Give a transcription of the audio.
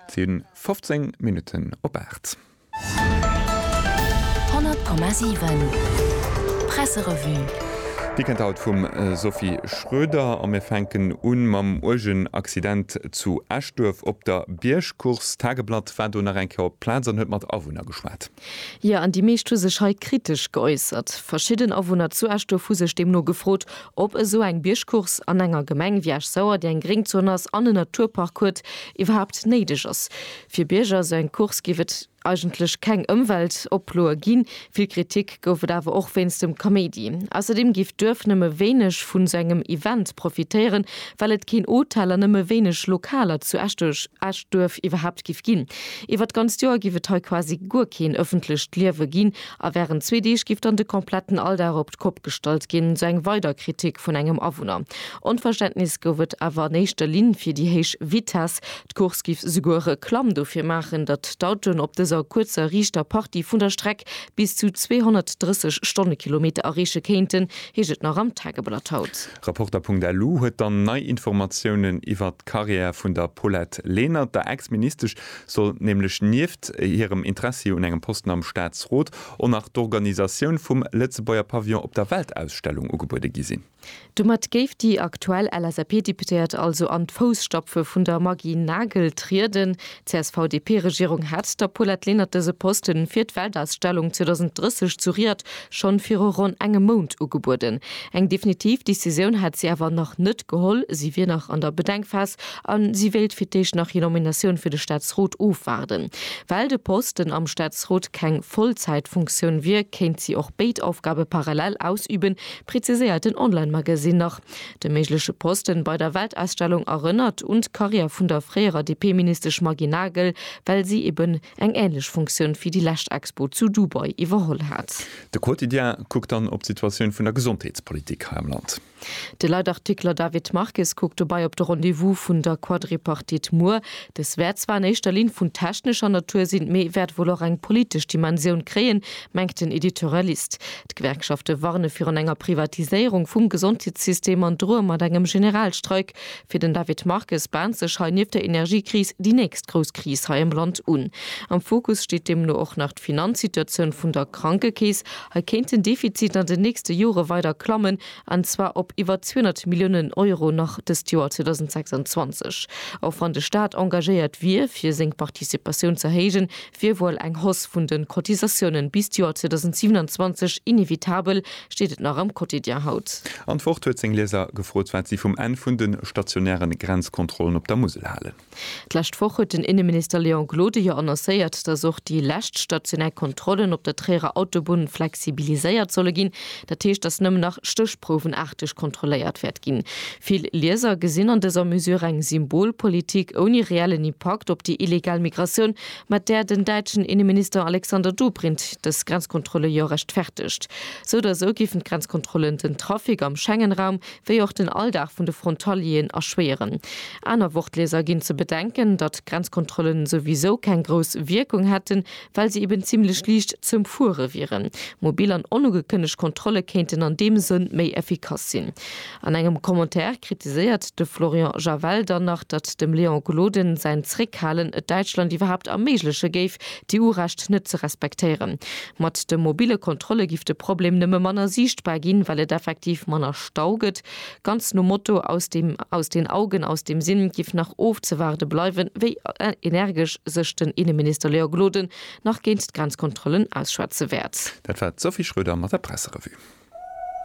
Sinn 15 Minutten op 8. 100,7 Presserevue. Dir kennt haut vum Sophie Schroeder a mir fänken un mam uergen Accident zu Eschduerf op der Biergcourse. D'Tageblatt war do nach eng Kéier op d'Plaz an huet mat Awunner geschwat. Jo, an déi meescht hu sech hei kritesch geäussert. Verschidden Awunner zu Eschdurf hu sech deemno gefrot, ob esou eng Biergcourse an enger Gemeng wéi Esch-Sauer, déi eng Gréngzon ass an en Naturpark huet, iwwerhaapt néideg ass. Fir Bierger esou eng Course géif et eigentlech keng Ëmweltoploe ginn. Vill Kritik gouf et awer och wéinst dem Kaméidi. Ausserdeem géif d'Duerf nëmme wéineg vun esou engem Event profitéieren, well et keen Hotel an nëmme wéineg Lokaler zu Eschdurf iwwerhaapt géif ginn. Iwwer d'ganzt Joer giff et hei quasi guer keen ëffentlecht Liewe ginn a während zwee Deeg giff dann de kompletten Alldag op d'Kopp gestallt ginn, sou eng weider Kritik vun engem Awunner. Onverständnis gouf et awer an éischter Linn fir déi héich Vitess. D'Course giff souguer Reklamm dofir maachen, datt d'Autoen op dëser kuerzer riichter Partie vun der Streck bis zu 230 Stonnekilometer erreeche kéinten, heescht et nach am Tageblatt haut. Reporter.lu huet dann nei Informatiounen iwwert d'Karriär vun der Paulette Lenert. Der Ex-Ministesch soll nämlech nieft hirem Interessi un engem Posten am Staatsrot och nach d'Organisatioun vum Lëtzebuerger Pavillon op der Weltausstellung ugebuede gi sinn. Domat géif déi aktuell LSAP-Deputéiert also an d'Fousstapfe vun der Maggy Nagel trieden. D'CSV-DP-Regierung hat der Paulette Lenert dëse Poste fir d'Weltausstellung 2030 zu Riad schonn viru ronn engem Mount ugebueden. Eng definitiv Decisioun hätt si awer nach net geholl. Si wier nach an der Bedenkphas a si wéilt fir d'éischt nach hir Nominatioun fir de Staatsrot ofwaarden. Well de Posten am Staatsrot keng Vollzäitfunktioun wier, kéint si och béid Aufgabe parallel ausüben, preziséiert den Online-Magasinn nach. De méigleche Posten bei der Weltausstellung erënnert un d'Karriär vun der fréierer DP-Ministesch Maggy Nagel, well si eben eng ähnlech Funktioun fir déi lescht Expo zu Dubai iwwerholl hat. De Quotidien kuckt dann op d'Situatioun vun der Gesondheetspolitik hei am Land. De Leitartikler David Marques kuckt dobei op de Rendez-vous vun der Quadripartite muer. Dës wäert zwar an éischter Linn vun technescher Natur sinn, mee wäert wuel och eng politesch Dimensioun kréien, mengt den Editorialist. D'Gewerkschafte warne virun enger Privatiséierung vum Gesondheetssystem an droe mat engem Generalstreik. Fir den David Marques bahnt sech hei nieft der Energiekris déi nächst grouss Kris hei am Land un. Am Fokus steet deemno och nach d'Finanzsituatioun vun der Krankekeess. Hei kéint den Defizit an den nächste Jore weider klammen. an zwar op iwwer 200 Milliounen Euro nach dëst Joer 2026. Och wann de Staat engagéiert wier fir seng Participatioun z'erhéijen, wier wuel eng Hausse vun de Cotisatiounen bis d'Joer 2027 inevitabel, steet et nach am Quotidien haut. An d'Wort huet seng Lieser gefrot, wat si vum Enn vun de stationäre Grenzkontrollen op der Musel halen. D'lescht Woch huet den Inneminister Léon Gloden jo annoncéiert, datt och déi lescht stationär Kontrollen op der Tréierer Autobunn flexibiliséiert solle ginn. Dat heescht, datt nëmmen nach stéchprouwenaarteg kontrolléiert wäert ginn. Vill Lieser gesinn an dëser Mesure eng Symbolpolitik ouni reellen Impakt op déi illegal Migratioun, mat där den däitschen Inneminister Alexander Dobrindt dës Grenzkontrolle jo rechtfertegt. Sou oder sou géifen d'Grenzkontrollen den Trafic am Schengen-Raum wéi och den Alldag vun de Frontalieren erschwéieren. Aner Wortleser ginn ze bedenken, datt d'Grenzkontrollen souwisou keng grouss Wierkung hätten, well se eben zimmlech liicht z'ëmfuere wieren. Mobil an onugekënnegt Kontrolle kéinten an deem Sënn méi effikass sinn. An engem Commentaire kritiséiert de Florian Javel dann nach, datt dem Léon Gloden säin Zréckhalen et Däitschland iwwerhaapt erméigleche géif, d'EU-Recht net ze respektéieren. Mat de mobile Kontrolle giff de Problem nëmme manner siichtbar ginn, well et effektiv manner Stau gëtt. Ganz nom Motto, aus dem aus den Augen, aus dem Sinn, giff nach ofzewaarde bleiwen, wéi energesch sech den Inneminister Léa Gloden nach géint d'Grenzkontrollen ausschwätze wäert. Dat war d'Sophie Schröder mat der Presserevue.